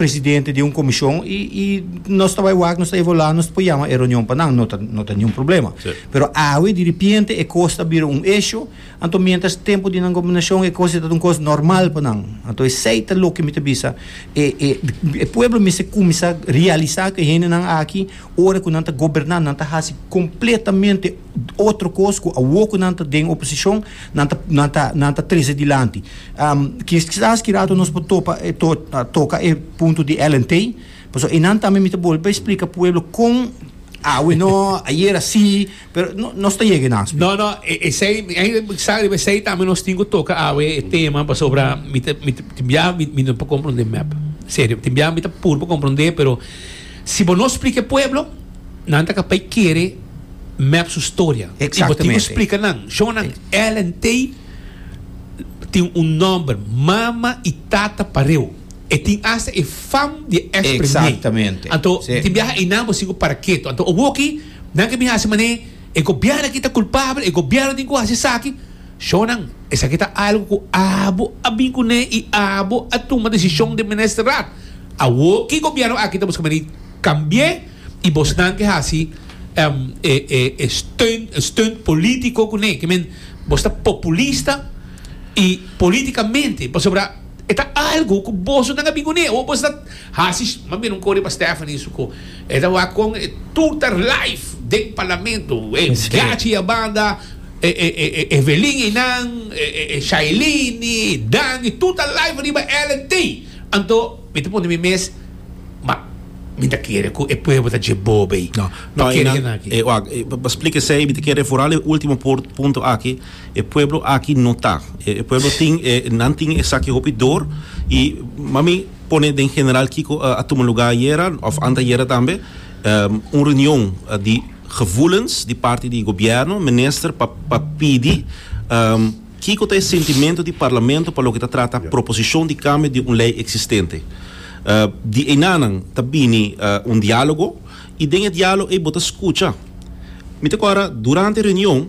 presidente di un comision y y nos ta bay wak nos ta evaluá nos por yama e reunion pa nan no ta no ta niun problema sí. pero awe diripiente e cos ta bira un issue anto mientras tempo di nan gobernacion e cos e ta un cos normal pa nan anto esey ta loke mi ta bisa e e e pueblo mester cuminsa realisa cu e hendenan aki ora cu nan ta goberna nan ta haci completamente otro cos cu awo cu nan ta den oposicion nan ta nan ta nan ta trece dilanti um kisas ki rato nos por topa e to toca e punto di Ellen Tey pasobra e nan tambe mi ta bolbe explica pueblo con awe no ayer asi pero no nos ta yega e nan No, no, e- esei, ei, sa riba esei tambe nos tin ku toka awe e tema pasobra mi te mi te tin bia mi mi no pa komprende mep. Serio, tin bia mi ta pur pa komprende pero Si bo no splika e pueblo, nan ta ka pai kere mep su storia. I bo tin ku splika nan. Shonnan, Ellen Tay tin un nòmber mama i tata pareu. E tin asta e fam di e èks Premier. Anto tin biaha einan bo siña ku paraketo. Anto owoki nan ke bin hasi manera e gobièrnu aki ta kulpabel, e gobièrnu tin ku hasi esaki. Shonnan, esaki ta algu ku abo a bin kuné i abo a tuma desishon den minister rad. Awor ki gobièrnu aki ta buska mani kambi'é i bosnan ke hasi e steun, e steunt polítiko kuné. Ke men, bos ta populista i polítikamente, pasobra e ta algu ku bosonan a bin kuné. Awor bos ta. Hasi mas bien un kore pa Stephanie su ko e ta wak kon e tuta life den parlamento e gachi a banda e Evelyn einan e Shailene e Danny tuta life riba Ellen te anto mi ta pone mi mes ma mi ta kere ku e pueblo ta dje bo bay pa kere dje nan aki. Wak pa splika esei mi ta kere foral e ultimo punto aki e pueblo aki no ta e pueblo tin e nan tin esaki hopi dor y mami. pone den general kiko a tuma lugá ayera òf antayera tambe, un reunion di gevoelens di parti di Gobièrnu, minister pa pa pidi kiko ta e sentimento di Parlamento pa loke ta trata proposishon di kambio di un lei eksistente. Di einanan ta bini un diálogo i den e diálogo ei bo ta skucha. Mi ta kòrda durante e reunion.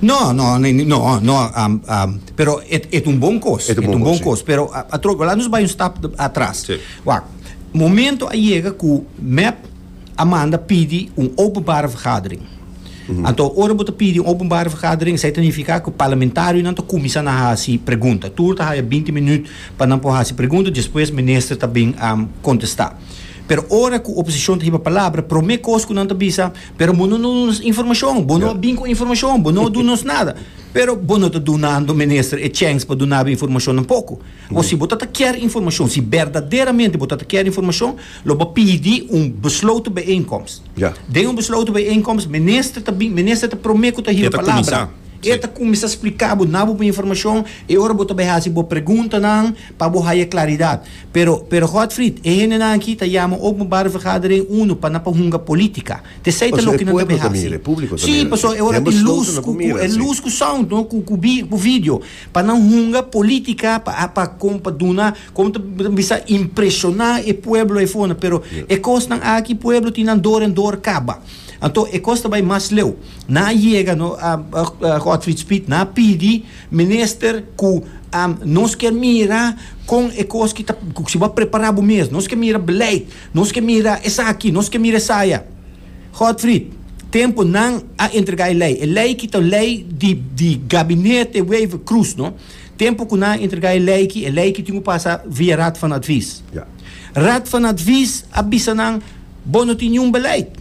No, no, no, no, no, um, um, pero et, et un bon kos. Et un bon, et un bon kos, pero a, a troco, la nos bai un stap atras. Sí. Wak, momento a llega ku MEP a manda pidi un openbare vergadering. Mm -hmm. Anto, ora bo ta pidi un openbare vergadering, sa ta nifiká ku parlamentarionan ta kuminsá na hasi pregunta. Tur ta haya 20 minüt pa nan por hasi pregunta, despues minister ta bin um, kontestá. Pero ora ku oposishon ta hiba palabra, promé kos ku nan ta bisa, pero bo no duna nos informacion, bo no a bin cu e informacion, bo no a duna nos nada. Pero bo no ta dunando, Minister, e chance pa duna bo informacion tampoco. Bo si bo ta ta kier informacion, si berdaderamente bo ta ta kier informacion, lo bo pidi un besloten bijeenkomst. Ja. Den un besloten bijeenkomst, Minister ta bin, Minister ta prome cu ta hiba E ta palabra. cuminsa. E ta cuminsa splica bo, na bo informacion, e ora bo ta bay haci bo preguntanan pa bo haya claridad. Pero, pero Godfried, e hendenan aki ta yama openbare vergadering uno pa nan por hunga politica. Tesey ta loke nan ta bin haci. Sí, pasobra e ora tin luz cu, cu, e luz cu sound, no, cu, cu vi, cu video, pa nan hunga politica, pa, pa, con, pa duna, como ta bisa, impresiona e pueblo eyfona. Pero e cosnan aki, pueblo tin nan dor en dor caba. Anto, e cos ta bay mas leu. Nan a yega, no, Godfried Speed, nan a pidi Minister cu nos kier mira con e cos ki ta, si bo a prepara bo mes, nos kier mira beleid, nos kier mira esaki, nos kier mira esaya. Godfried, tempo nan a entrega e ley, e ley ki ta ley di di gabinete Wever Croes no, tempo cu nan a entrega e ley ki, e ley ki tin cu pasa via Raad van Advies. Raad van Advies a bisa nan bo no tin niun beleid,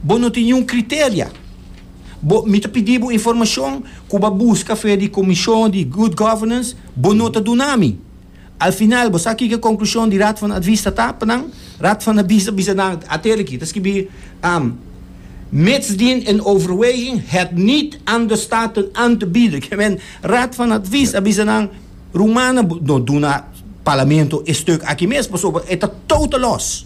bo no tin niun criteria. Bo, mi ta pidi bo informashon ku bo a buska afer di Komishon di Good Governance, bo no ta duna mi. Al final, bo sa kiko e konklushon di Raad van Advies ta ta pa nan? Raad van Advies a bisa nan, a ter aki, ta skibi, um, mits din en overweging het niet aan de Staten aan te bieden. Ke men, Raad van Advies a bisa nan, rumannan, bo no duna Parlamento e stuk aki mes, pasobra e ta totalos.